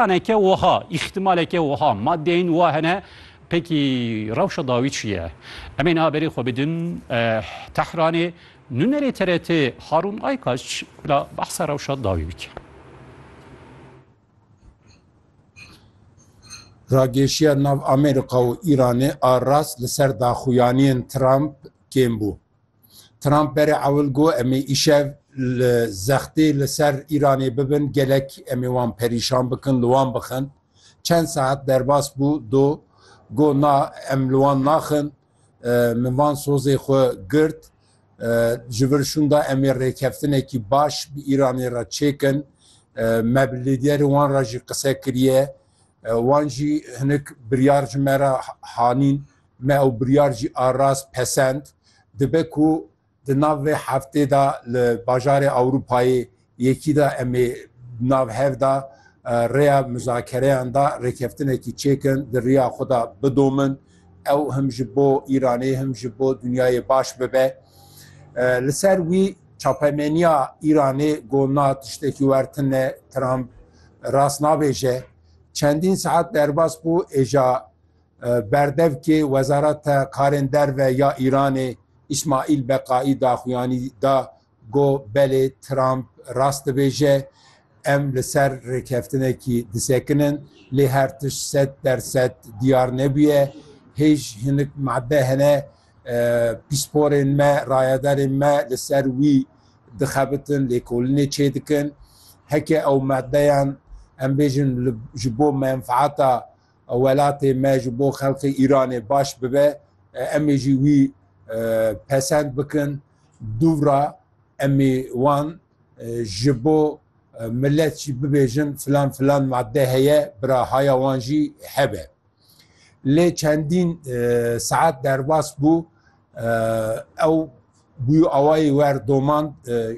Aneke wiha, îhtimaleke wiha, madeyên wiha hene. Pekî rewşa dawî çi ye? Em ê niha berê xwe bidin Tehranê. Nûnerê TRT Harûn Aykaç bila behsa rewşa dawî bike. Rageşiya nav Amerîka û Îranê a rast li ser daxuyaniyên Trump kêm bû. Trump berê ewil got em ê îşev li zextê li ser Îranê bibin, gelek em ê wan perîşan bikin, li wan bixin. Çend saet derbas bû do got na em li wan naxin, min van sozê xwe girt. Ji vir şûnda em ê rêkeftinekî baş bi Îranê re çêkin. Me bi lîderê wan re jî qise kiriye. Wan jî hinek biryar ji me re hanîn. Me ew biryar jî a rast pesend dibe ku di nav vê heftê de li bajarê Ewropayê Yekî de em ê di nav hev de rêya muzakereyan de rêkeftinekî çêkin di riya xwe de bidomin. Ew him ji bo Îranê him ji bo dinyayê baş bibe. Li ser wî çapemeniya Îranê got na tiştekî wer tin e, Trump rast nabêje. Çendîn saet derbas bû êja Berdevkê Wezareta Karên Derve ya Îranê Îsmaîl Beqaî daxuyanî da ku belê Trump rast dibêje, Em li ser rêkeftinekî disekin in, lê her tişt sed der sed diyar nebûye. Hêj hinek madde hene pîsporên me, rayedarên me li ser wî dixebitin, lêkolinê çêdikin. Heke ew maddeyan em bêjin ji bo menfaeta Welatê me ji bo xelkê Îranê baş bibe, em ê jî wî pesend bikin. Dûvra em ê wan ji bo milet jî bibêjin filan filan madde heye, bira haya wan jî hebe. Lê çendîn saet derbas bû. Ew bûyî awayî wer domand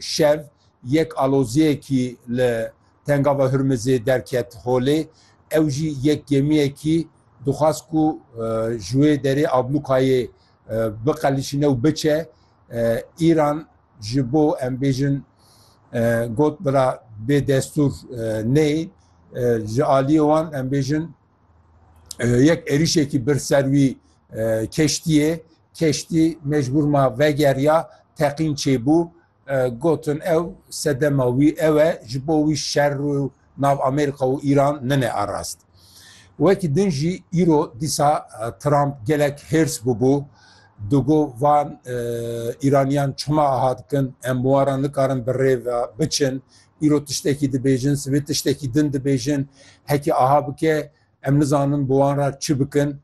şev yek aloziyekî li Tengava Hurmizê derket holê. Ew jî yek gemiyekî dixwest ku ji wê derê ablûkayê biqelişîne û biçe Îran ji bo em bêjin got bira bêdestûr neyê ji aliyê wan em bêjin yek êrîşekî bir ser wî keştiyê keştî mecbûr ma vegeriya teqîn çêbû gotin ew sedema wî ew e ji bo wî şer û nav Amerîka û Îran nine arast. Wekî din jî îro dîsa Trump gelek hêrs bûbû digo van Îraniyan çima aha dikin em wara nikarin bi rêve biçin îro tiştekî dibêjin, sibê tiştekî din dibêjin, hekî aha bike em nizanin bi wan re çi bikin,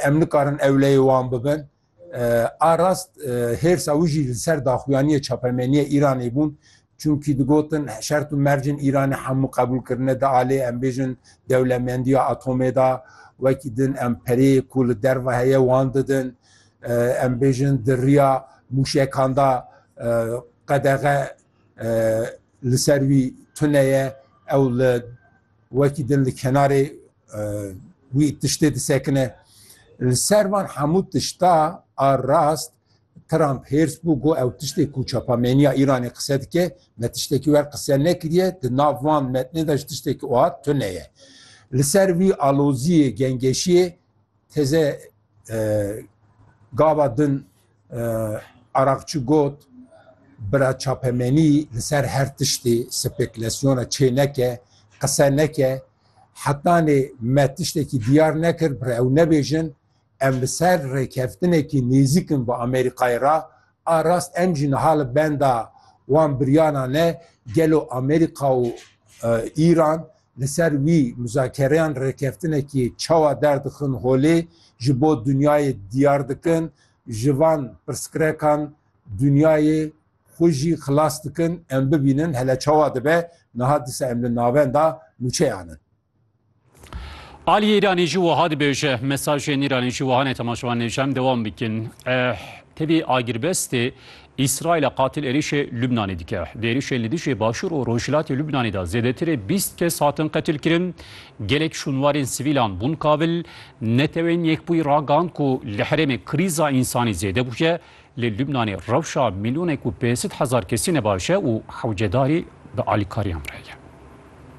em nikarin ewleyê wan bibin. A rast hêrsa wî jî li ser daxuyaniyê çapemeniyê Îranê bûn, çunkî digotin şert û mercên Îranê hemû qebûl kirine di alê em bêjin dewlemendiya atomê de, wekî din em pereyê ku li derve heye wan didin, em bêjin di riya mûşekan de qedexe li ser wî tune ye ew li wekî din li kenarê wî tiştê disekine li ser van hemû tişta a rast Trump hêrs bû got ew tiştê ku çapameniya Îranê qise dike me tiştekî wer qise nekiriye di nav van metnê de ji tiştekî oha tune ye li ser wî aloziyê gengeşiyê Teze gava din Araqçi got, Bira çapemenî li ser her tiştê spekulasyona çê neke, qise neke. Hetanê me tiştekî diyar nekir, bi ew nebêjin em li ser rêkeftinekî nêzîk in bi Amerîkayê re, A rast em jî niha li benda wan biryara ne, gelo Amerîka û Îran li ser wî muzakereyan rêkeftinekî çawa derdixin holê, ji bo dinyayê diyar dikin, ji van pirsgirekan dinyayê xwe jî xilas dikin, em bibînin hele çawa dibe niha disa em li navenda nûçeyan in. Aliyê Îranê jî wiha dibêje, mesajên Îranê jî wiha ne temaşevan nêje em dewam bikin. Tevî agirbestê Îsraîla qatil êrişê Lubnanê dike. Di êrişên li dijî Başûr û Rojhilatê Lubnanê de zêdetirê bîst kes hatin qetilkirin. Gelek şûnwarên sivîlan bûn kabil. Netewên Yekbûyî ragand ku li herêmê krîza însanî zêde bûye. Li Lubnanê rewşa mîlyonek û pênsîd hezar kesî ne baş e û hewcedarî bi alîkariyan re ye.